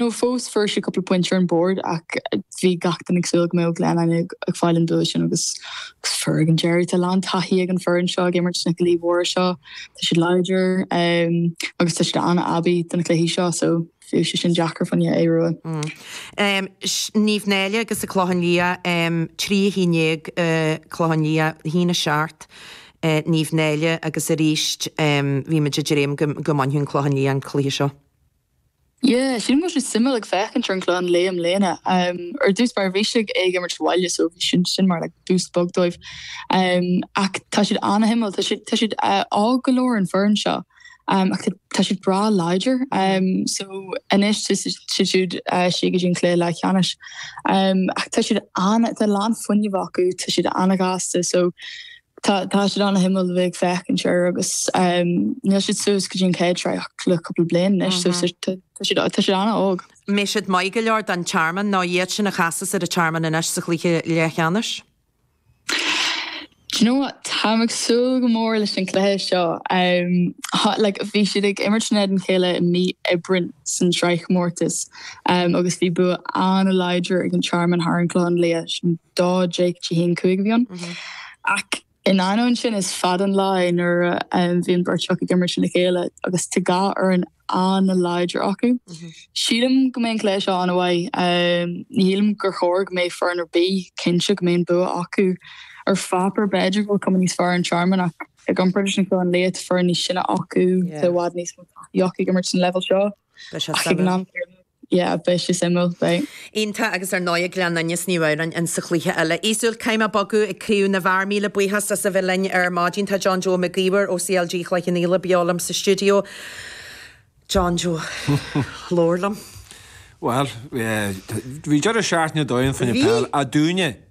nó fós fuair siad cúpla pointe ar an bord ach bhí gach duine ag súil go mbeadh Gleann Fhinne ag fáil an bua sin agus fuair ag an deireadh. Tá a lán taithí ag an foireann seo ag imirt sna cluichí mhóra seo. Tá siad láidir agus tá siad an-aibí do na cluichí seo so bheadh sé sin deacair fá Aodh Ruadh. Naomh Náille agus an Clochán Liath, 3 11 Clochán Liath, 1 7 Naomh Náille agus arís bhí muid ag dréim go mbainfeadh Clochán Liath an cluiche seo. Yeah, sílim go bhfuil siad suimiúil ag féachaint ar an gClochán Liath i mbliana. Ar dtús mar bhí siad ag imirt abhaile so bhí sé sin mar like boost beag dóibh. Ach tá siad ana-shuimiúil, tá siad tá siad óg go leor an foireann seo ach tá siad breá láidir so anois siad siúd siar go dtí an cluiche leathcheannais. Ach tá siad ana, tá a lán fuinnimh acu, tá siad ana-ghasta so, Tá siad an-suimiúil a bheith ag féachaint air agus níl siad suas go dtí an chéad sraith ach le cúpla bliain anois so tá siad an-óg. An mbeidh siad maith go leor don Tearmann nó iad sin a chasfas ar an Tearmann anois sa chluiche leathcheannais? Do you know what? Táim ag súil go mór leis an gcluiche seo. Bhí siad ag imirt in éadan a chéile i mí Aibreáin san sraithchomórtas. agus bhí bua an-láidir ag an Tearmann thar an gClochán Liath sin dó deich go dtí a haon cúig a bhí ann. Ach in ainneoin sin is fada an lá é nuair a bhíonn beirt acu ag imirt lena chéile agus tá dhá fhoireann an-láidir acu. Sílim go mbeidh an cluiche seo an-mhaith. Ní shílim gur chóir go mbeidh foireann ar bith cinnte go mbeidh an bua acu. Ar pháipéar b'fhéidir go bhfuil cuma níos fearr ar an Tearmann ach i gcomparáid leis an gClochán Liath tá foireann níos sine acu, tá i bhfad níos mó taithí acu ag imirt san leibhéal seo. Beidh sé suimiúil. Yeah, beidh sé suimiúil, beidh. Iontach agus ar ndóigh ag Gleann Fhinne 's Naomh Adhamhnáin in sa chluiche eile. Easumhal caithfidh mé bogadh ag craobh na bhfear. Míle buíochas as a bheith linn ar maidin. Tá John Joe Mac Íomhair ó CLG Chloich Cheann Fhaola beo liom sa stiúideo. John Joe, labhair liom. Bhuel, bhí deireadh seachtaine ar dóigh ann fá choinne peile dúinne!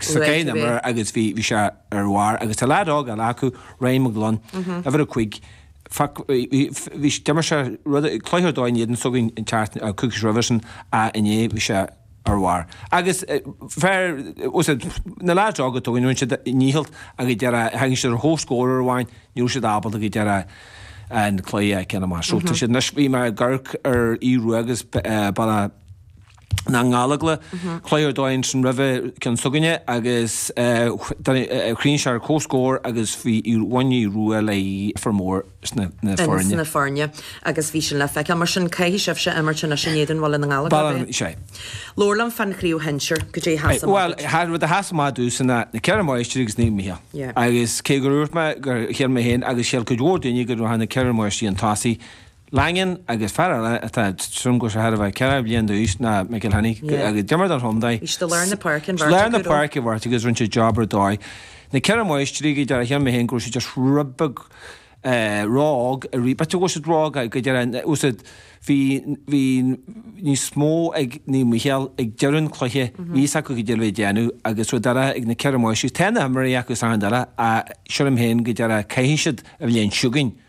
sa gcéin iomaire agus bhí bhí sé ar bharr agus tá leaid óg eile acu Ryan McGlone uimhir a cúig fac bhí bhí d'imir sé rud cluiche ar dóigh in éadan s'againne an ceart a coicís roimhe sin ach inné bhí sé ar bharr agus fear os a na leaids óga tú in rince a ndícheall a bhí deir a thagann siad ar comhscór amháin níl siad ábalta go deir a an cluiche ceanna mar sult sin leis bhí mé ag amharc ar Aodh Ruadh agus ba na nGallóglach cluiche ar dóigh ansin roimhe ceann s'againne agus chríochnaigh sé ar comhscór agus bhí Ruaidhrí Aodh Ruadh le formhór na foirne. na foirne agus bhí sin le feiceáil. Mar sin, caithfidh sibhse imirt anois in éadan Bhaile na nGallóglach. Bhuel, sin é. Labhair liom fan chraobh shinsir. Goidé a sheas amach duit. Bhuel, rud a sheas amach domhsa ná na Ceithre Máistrí agus Naomh Micheál. Yeah. Agus cé gur úirt mé gur shíl mé féin agus shíl cuid mhór daoine go raibh na ceithre máistrí chun tosaigh, Langan agus fear eile atá ag tarraingt ar a bheith 40 bliain d'aois, McElhinney. D'imir don chontae i lár na páirce i bhfad agus rinne sé job ar dóigh. Na ceithre máistrí, go dearfa, chonaic mé féin go raibh siad just rud beag ró-óg arís, b'fhéidir go bhfuil siad ró-óg, go dearfa, usaid, bhí, bhí níos mó ag Naomh Micheál ag deireadh an cluiche, bhí fhios acu go dearfa a déanamh agus rud eile ag na ceithre máistrí, tá na himreoirí acu, is ea an dara, a, sílim féin go dearfa, tiocfaidh siad an bhliain seo chugainn.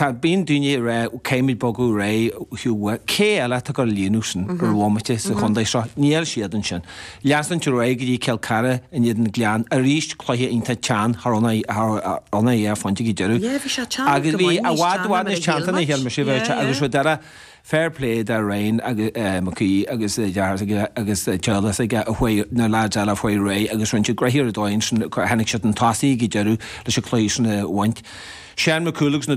Tá, bíonn daoine ag rá caithfimid bogadh ar aghaidh ó Hugh Wyke. Cé eile atá ag líonadh sin ar an bhomaite sa chontae seo? Níl siad ansin. Leanaimis ar aghaidh go dtí Cill Chartha in éadan na Gleann arís, cluiche iontach teann thar ionainn é ar phointe go deireadh. Yeah, bhí sé teann go maith, níos teann ná mar a shíl muid. Yeah, yeah. Agus rud eile, fair play do Ryan McHugh agus a dheartháir agus Chaolas ag a chuaigh na lads eile faoi réidh agus rinne siad graithe ar dóigh ansin, tháinig siad chun tosaigh ag deireadh leis an cluiche sin a bhaint. Sean McCool agus na.